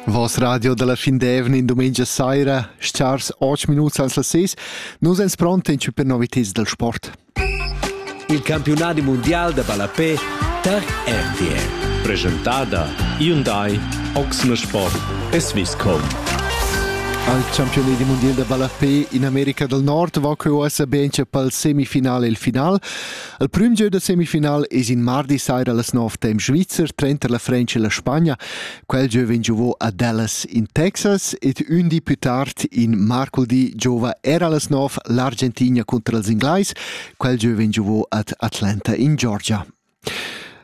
Voss radio dalla fin d'evna in dumengia saira, stars 8 minuts ans las 6, nus ens pronten per novitads del sport. Il campionadi mondial da ballapé tar RTL. Presentada Hyundai Oxne Sport e Swisscom. Al campionat mondial da ballapé in America del Nord va quei ussa ben per il semifinale e il final. Il prüm gieu da semifinal es in mardi saira las nov temp svizzer tranter la Frantscha e la Spagna. Quel gieu vegn giovò a Dallas in Texas ed ün di più tard in marcudì giova era las nov l'Argentina contro els inglais. Quel gieu vegn giovò ad Atlanta in Georgia.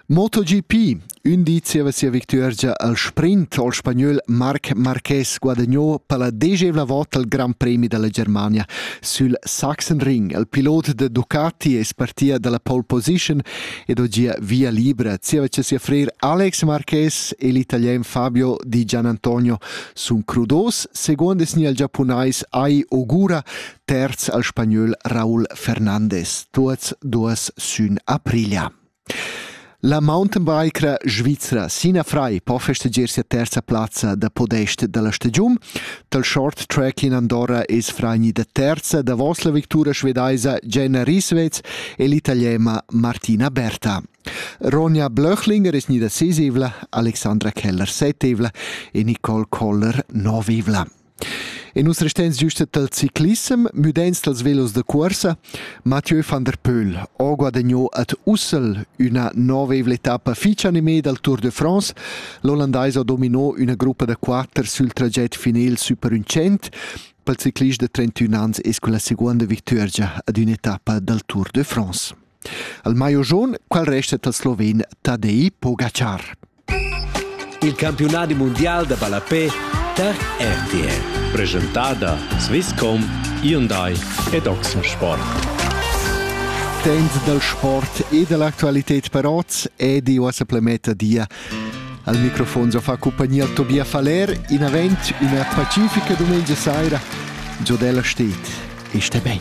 MotoGP, ün di zieva sia victuergia al sprint al spagnöl Marc Marquez guadagnou per la desevla volta il Gran Premi dalla Germania sül Sachsenring. Il pilot de Ducati es partia dalla pole position ed ho gia via libra zieva cha sia frer Alex Marquez e l'italian Fabio Di Gianantonio sun crudos, secondo es gnir il giapunais Ai Ogura, terz al spagnöl Raúl Fernandez, tuots duos sün Aprilia. La mountainbikera svizra Sina Frei po festegiar sia terza plazza da podest dalla stagiun. Dal short track in Andorra es fragnida terza davos la victura svedaisa Jenna Risvez e l'italiema Martina Berta. Ronja Blöchlinger es gnida sisivla, Alexandra Keller setevla e Nicole Koller novivla. E nus resteins giusta dal ciclissem, müdains dals velos da cuorsa. Mathieu van der Pöhl ho guadagno ad Ussel üna novevla etappa fich animée dal Tour de France. L'ollandais ha domino üna gruppa da quatter sül traget final super ün cent. pel ciclist de 31 ans es con la seguonda victuergia ad ün'etappa dal Tour de France. Al maio jaun, qual resta dal sloven Tadej Pogacar? Il campiunadi mundial da ballapè tar RTL, preschentada Swisscom, Hyundai ed Oxensport. Temp dal sport e dall'actualità per oz è di uossa plemetta dia. Al microfon so fa compagnia Tobias Faller, in avent una pacifica domenica saira. Giodella steht, este ben.